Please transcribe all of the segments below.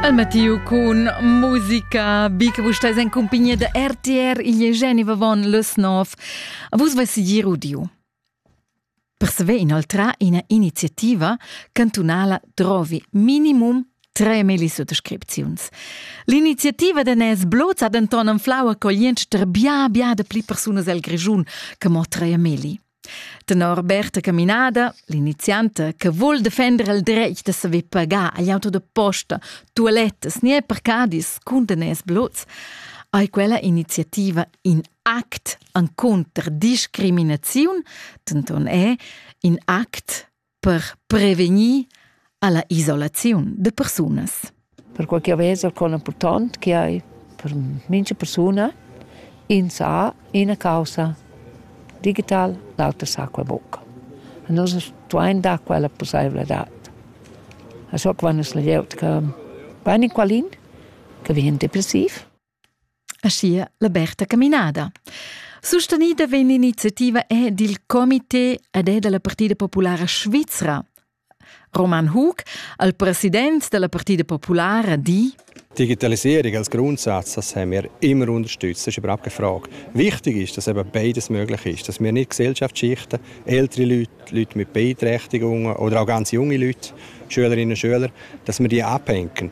El Mattiu cun musica. Bi che vus stais en cumpagnia da RTR, igl è Geneva von Lösnov. Vus vais sigir udiu. Per saver inoltrar ina iniziativa cantunala trovi minimum tre melisottascripziuns. L'iniziativa de Nes Bloz ha denton anflau accogliensch ter bia bia de pli persunas el Grischun che mo tre meli. Tenor Berta Caminada, l'inizianta che vul defender il dretg da saver pagar agl auto da posta, tualettas ni parcadis cun daners blots, ei quella iniziativa in act encunter discriminaziun, denton è in act per prevegnir alla isolaziun de persunas. Per quel che vesa con important che hai per mincha persuna in sa ina causa digital, l'altra sa quella bucca. Nos tuain da quella possibilità. Also quando es la glieud che va in qualin, che vien depressiv. Aschia la Berta Caminada. Sustenida vegn l'iniziativa è dil comité ed è dalla Partida Populara Svizra. Roman Hug, al president dalla Partida Populara, di Digitalisierung als Grundsatz, das haben wir immer unterstützt, das ist überhaupt keine Frage. Wichtig ist, dass eben beides möglich ist, dass wir nicht Gesellschaft schichten, ältere Leute, Leute mit Beeinträchtigungen oder auch ganz junge Leute, Schülerinnen und Schüler, dass wir die abhängen.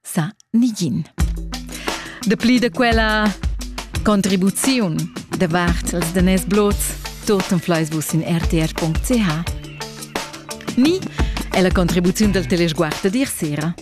sa nigin. Dapli da quella contribuziun davart els daners blots tutten fleisbus in rtr.ch ni è la contribuziun del telesguard dir sera.